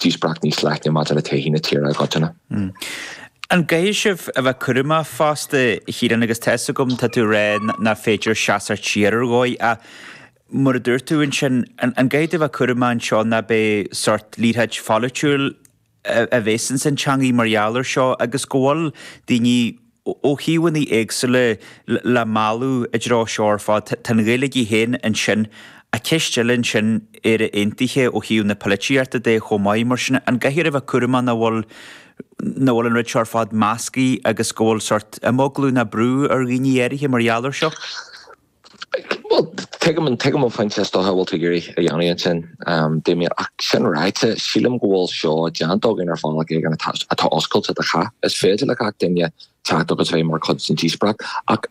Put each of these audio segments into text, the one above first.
díospóireacht níos leithne maidir le todhchaí na tíre i gcoitinne. An gcaithfidh sibh a bheith cúramach fosta, a Chiaráin, agus tá 'fhios agam, tá tú ag rá nach féidir seasamh siar ar dhóigh ach mar a dúirt tú ansin, an gcaithfidh tú a bheith cúramach anseo nach mbeidh sórt liathróid pholaitiúil a bhéas ins an teangaidh mar gheall ar seo agus go bhfuil daoine ó thaobhanna éagsúla le mealladh i dtreo seo ar fad. Tá an Ghaeilge í féin ansin, ach ceist eile ansin, Éire Aontaithe ó thaobh na polaitíochta de chomh maith, mar sin an gcaithfear a bheith cúramach nach bhfuil nach bhfuil an rud seo ar fad measctha agus go bhfuil sort imeaglú ná brú ar dhaoine áirithe mar gheall air seo? Bhuel, tuigim an pointe is dócha a bhfuil tú ag iarraidh a dhéanamh ansin, Damien, ach sin ráite, sílim go bhfuil seo déanta againn ar bhealach éigin atá oscailte do chách. Is féidir le gach duine teacht agus bheith mar chuid den díospóireacht ach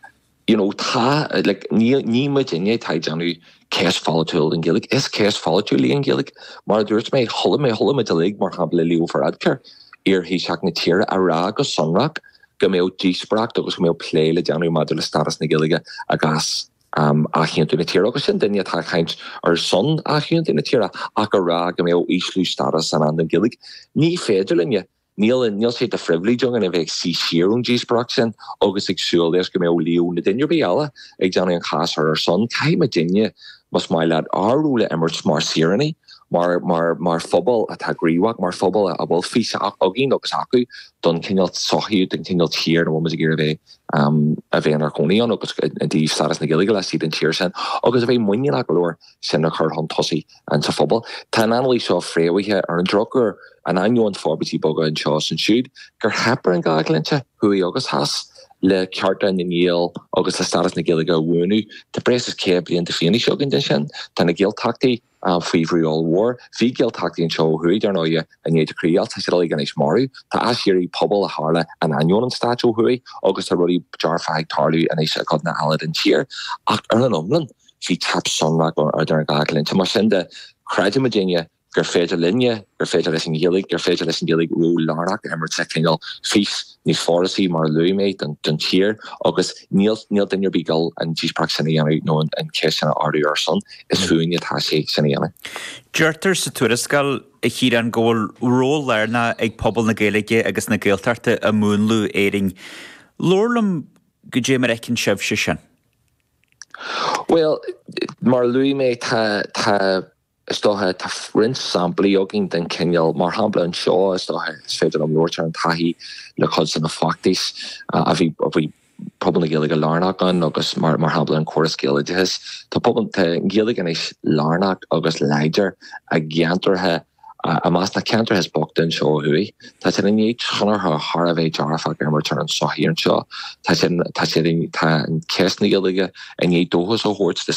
you know tá, like, níl, ní muidinne atá ag déanamh ceist pholaitiúil den Ghaeilge. Is ceist pholaitiúil í an Ghaeilge. Mar a dúirt mé, chuala mé, chuala muid uilig, mar shampla Leo Varadkar, iar-Thaoiseach na tíre, ag rá go sonrach, go mbeadh díospóireacht agus go mbeadh plé le déanamh maidir le stádas na Gaeilge i gcás athaontú na tíre, agus sin duine atá ag caint ar son athaontú na tíre ach ag rá go mbeadh ísliú stádas i ndán don Ghaeilge. Ní féidir linne. Níl, níl sé de phribhléid againn a bheith ag suí siar ón díospóireacht sin agus ag súil leis go mbeadh Leo nó duine ar bith eile ag déanamh an cháis ar ár son. Caithfidh muidinne, más maith leat, ár ról a imirt mar shaoránaigh, mar, mar, mar phobal atá gníomhach, mar phobal a bhfuil fís againn agus acu don chineál sochaí, don chineál tír, a bhfuil muid ag iarraidh a bheith inár gcónaí ann agus i dtaobh stádas na Gaeilge laistigh den tír sin agus a bheith muiníneach go leor sin a chur chun tosaigh sa phobal. Tá an anailís seo fréamhaithe ar an drochuair in ainneoin forbairtí beaga anseo is ansiúd gur theip ar an dá dhlínse, thuaidh agus theas, le cearta na nGael agus le stádas na Gaeilge a bhuanú. Tá breis is 100 bliain de fhianaise againn de sin. Tá na Gaeltachtaí. faoi bhrú ollmhór. Bhí Gaeltachtaí anseo ó thuaidh, dar ndóigh, i ndiaidh na críochdheighilte, tá siad uilig anois marbh. Tá aiséirí pobail a tharla in ainneoin an stáit ó thuaidh agus tá rudaí dearfacha ag tarlú anois i gcodanna eile den tír. Ach ar an iomlán, bhí teip shonrach ar an dhá dhlínse. Mar sin de, creideann muidinne gur féidir linne, gur féidir leis an Ghaeilge, gur féidir leis an Ghaeilge ról lárnach a imirt sa chineál fís, níos forásaí, mar a luaigh mé, don tír agus níl duine ar bith ag dul an díospóireacht sin a dhéanamh nó an cheist sin a ardú ar ár son. Is fúinne atá sé sin a dhéanamh. Deirtear sa tuarascáil, a Chiaráin, go bhfuil ról lárnach ag pobal na Gaeilge agus na Gaeltachta i múnlú Éirinn. Labhair liom goidé mar a fheiceann sibhse sin. Bhuel, mar a luaigh mé, tá. Is dócha, tá roinnt samplaí againn den chineál, mar shampla anseo, is dócha, is féidir liom labhairt ar an taithí le cuid de na feachtais a bhí pobal na Gaeilge lárnach ann agus mar shampla an córas Gaeloideachais. Tá pobal, tá an Ghaeilge anois lárnach agus láidir i gceantracha, i measc na ceantracha is boichte anseo ó thuaidh. Tá siad i ndiaidh tionchar thar a bheith dearfach a imirt ar an sochaí anseo. Tá siad, tá siad, tá an ceist na Gaeilge i ndiaidh dóchas a thabhairt do